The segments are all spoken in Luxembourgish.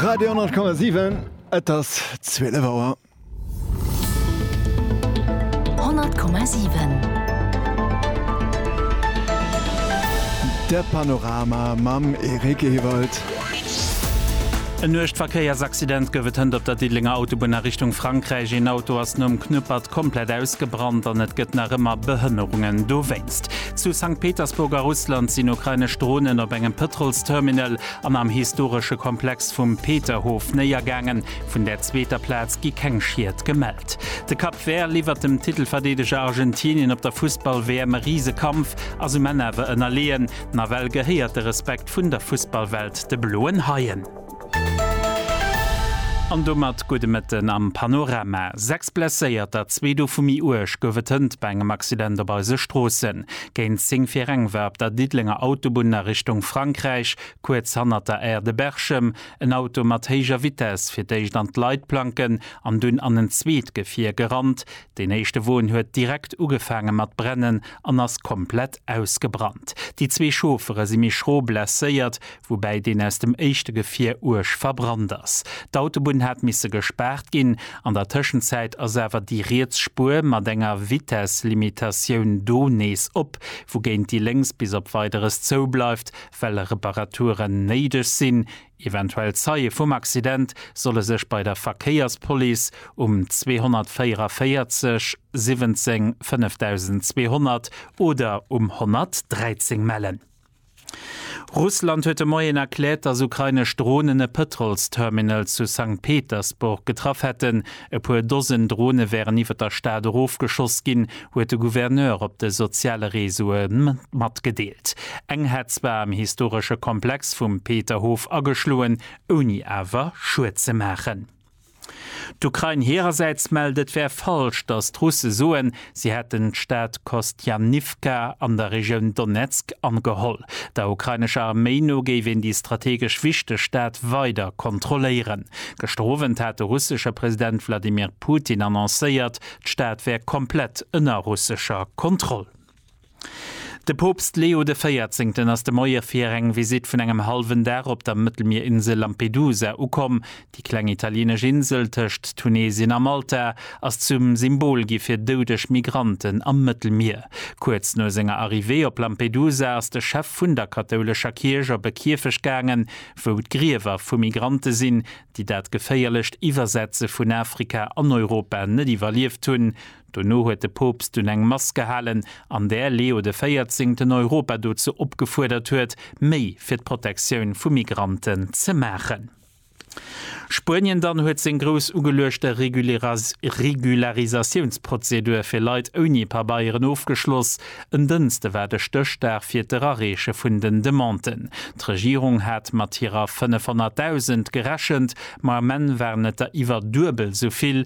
Radio 10,7 Et ass 12 Auer. 10,7 De Panorama mam Eric Ewald. En nuecht Verkéiersaccident gouf et hënt op der Diddelenger Autobunn a Richtung Frankräich. Een Auto ass nom Knuppert komplett ausgebrannt an et gëtt nach ëmmer Behënnerungen dowéinst. Zu Sankt Petersburg a Russland sinn ukrainesch Dronen op engem Pëtrolsterminal an am historesche Komplex vum Peterhof néiergaangen. Vun der zweeter Plaz gi keng Schied gemellt. De Cap Vert liwwert dem Titelverdeedeger Argentinien op der Fussball-WM e Risekampf, ass um Enn awer ënnerleeën. Nawell gehéiert de Respekt vun der Fussballwelt de Bloen Haien. An domat gudde Mëtten am Panorama. Sechs Blesséierter, zwee dovu méi uerg, gouf et hënt bei engem Accident op eise Stroossen. Géint 10 fir eng war op der Diddelenger Autobunn a Richtung Frankräich, kuerz hannert der Aire de Berchem, en Auto mat héijer Vitess fir d'éischt an d'Leitplanken an dunn an en zweet Gefier gerannt. Deen éischte Won huet direkt ugefaange mat brennen an ass komplett ausgebrannt. Déi zwee Chauffere si méi schro blesséiert, woubäi deen aus dem éischte Gefier uerg verbrannt ass. D'Autobunn hat misse gespaart ginn. An der Tëschenzäit ass awer déi riets Spuer mat enger Vitesslimitatioun do nees op, wougéint déi lénks bis op Weideres zou bleift, well Reparaturen néideg sinn. Eventuell Zeie vum Accident solle sech bei der Verkéierspolice um 244 17 5200 oder um 113 mellen. Russland huet de Moien erkläert, datt ukrainesch Dronen e Pëtrolsterminal zu Sankt Petersburg getraff hätten. E puer Dosen Drone wären iwwer der Stad erofgeschoss ginn, huet de Gouverneur op de soziale Reseaue matgedeelt. Eng hätt zwar am historesche Komplex vum Peterhof ageschloen, ouni awer Schued ze maachen. D'Ukrain hirersäits mellt, et wär falsch, datt d'Russe soen, si hätten d'Stad Kostianivka an der Regioun Donezk ageholl. Der ukrainescher Arméi no géif een déi strategesch wichteg Stad weider kontrolléieren. Gëschter Owend hat de russesche President Wladimir Putin annoncéiert, d'Stad wär komplett ënner russescher Kontroll. De Poopst Leo de Véierzéngten ass de Moie fir eng Visitt vun engem hallwen Dag op der Mëttelmierinsel Lampedusa ukomm. Déi kleng italieenesch Insel tëscht Tunesien a Malta ass zum Symbol gi fir doudeg Migranten am Mëttelmier. Kuerz no senger Arrivée op Lampedusa ass de Chef vun der kathoulescher Kierch op e Kierfecht gaangen, wou d'Griewer vu Migrante sinn, déi dat geféierlecht Iwwersetze vun Afrika an Europa net iwwerlieft hunn. Dono huet de Poopst dunn eng Mass gehalen, an där Leo de Véierzéngten Europa dozou opgefuerdert huet, méi fir d'Protektioun vu Migranten ze maachen. Spuenien dann huet seng grouss ugeluechte Regularisatiounsprozedur fir Leit ouni Pabeieren ofgeschloss. En Dënste war de Stéchdag fir d'Erareeche vun den Demanden. D'Regierung hat mat hirer 500.000 gerechent, ma am Enn waren et der iwwer duebel esou vill,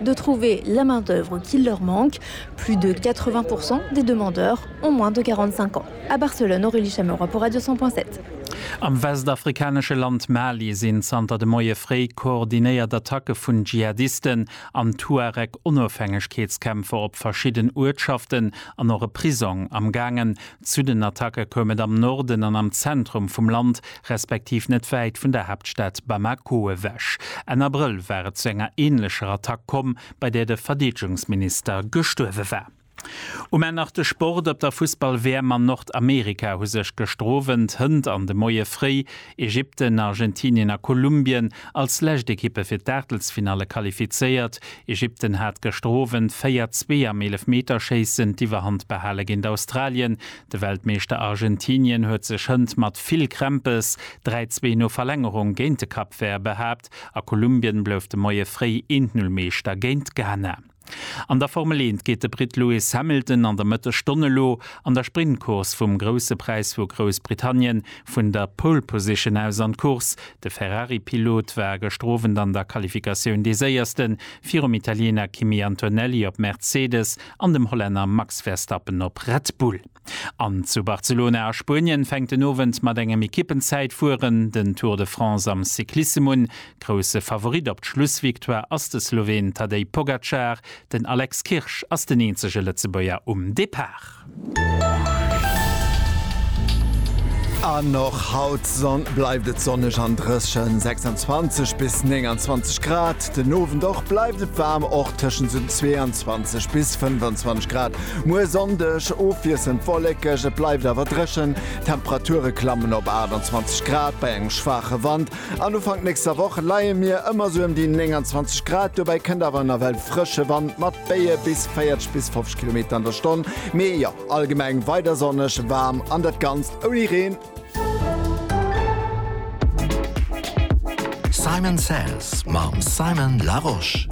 de trouver la main d'œuvre qu'il leur manque, plus de 80 pour cent des demandeurs ont moins de 45 ans à Barcelone, Aurélie Chameroy pour Radio 100.7. Am westafrikanesche Land Mali sinn zanter de Moie fréi koordinéiert Attacke vun Dschihadisten an Tuareg-Onofhängegkeetskämpfer op verschidden Uertschaften an och e Prisong amgaangen, Zu den Attacke koum et am Norden an am Zentrum vum Land, respektiv net wäit vun der Haaptstad Bamako ewech. Enn Abrëll war et zu enger änlecher Attack komm, bei där de Verdeedegungsminister gestuerwe war. Um Enn nach de Sport, Op der Fussball-WM an Nordamerika hu sech gestroowent Hënt an de Moie fréi Ägypten, Argentinien a Kolumbien als lescht Ekippe fir d'Aachtelsfinalle qualifizéiert. Ägypten hat gëschter Owend 4, 2 am Eelefmeterschéissen d'Iwwerhand behale géint Australien. De Weltmeeschter Argentinien huet sech hënt mat vill Krämpes 3, 2 no Verlängerung géint de Cap Vert behaapt a Kolumbien blouf de Moie fréi 1, 0 Meeschter géint Ghana. An der Formel Eent geet de Britt Lewis Hamilton an der Mëttesstonn elo an der Sprintcourse vum Grousse Präis vu Groussbritannien vun der Pole Position aus an d'Course. De Ferrari-Pilot war gëschter Owend an der Qualifikatioun dee Séierste virum Italiener Kimi Antonelli op Mercedes an dem Hollänner Max Verstappen op Red Bull. An zu Barcelona a Spuenien fänkt den Owend mat engem Ekippenzäitfueren den Tour de France am Cyclissem un. Grousse Favorit op d'Schlussvictoire ass de Sloween Tadej Pogacar, den Alex Kirsch ass den eenzege Lëtzebuerger um Depart. An och haut bleift et sonneg an dréchen, 26 bis 29 Grad. Den Owend och bleift et waarm, och tëschent esou 22 bis 25 Grad. Muer Sonndeg ofwiesselnd wollekeg, et bleift awer dréchen. D'Temperature klammen op 28 Grad bei engem schwaache Wand an Ufank nächster Woch leie mir ëmmer esou ëm déi 29 Grad. Dobäi kënnt awer nawell frësche Wand mat Béie bis 40 bis 50 Kilometer an der Stonn. Mee jo, allgemeng weider sonneg, waarm an dat Ganzt ouni Reen. Simon Says mam Simon Larosche.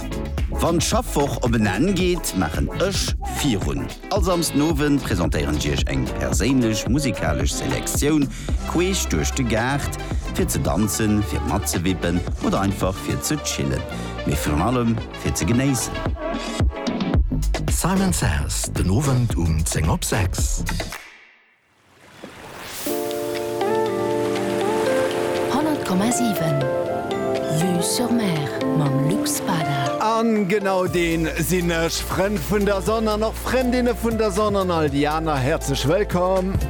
Wann d'Schaffwoch op en Enn geet, maachen ech virun. All Samsden Owend presentéieren ech iech eng perséinlech musikalesch Selektioun queesch duerch de Gaart, fir ze danzen, fir matzewippen oder einfach fir ze chillen, mee virun allem fir ze genéissen. Simon Says, den Owend um 10 op 6. Honnert Komma siwen Vue sur Mer mam Luc Spada. An genau deen sinn ech, Frënn vun der Sonn an och Frëndinne vun der Sonn an all déi aner, häerzlech wëllkomm!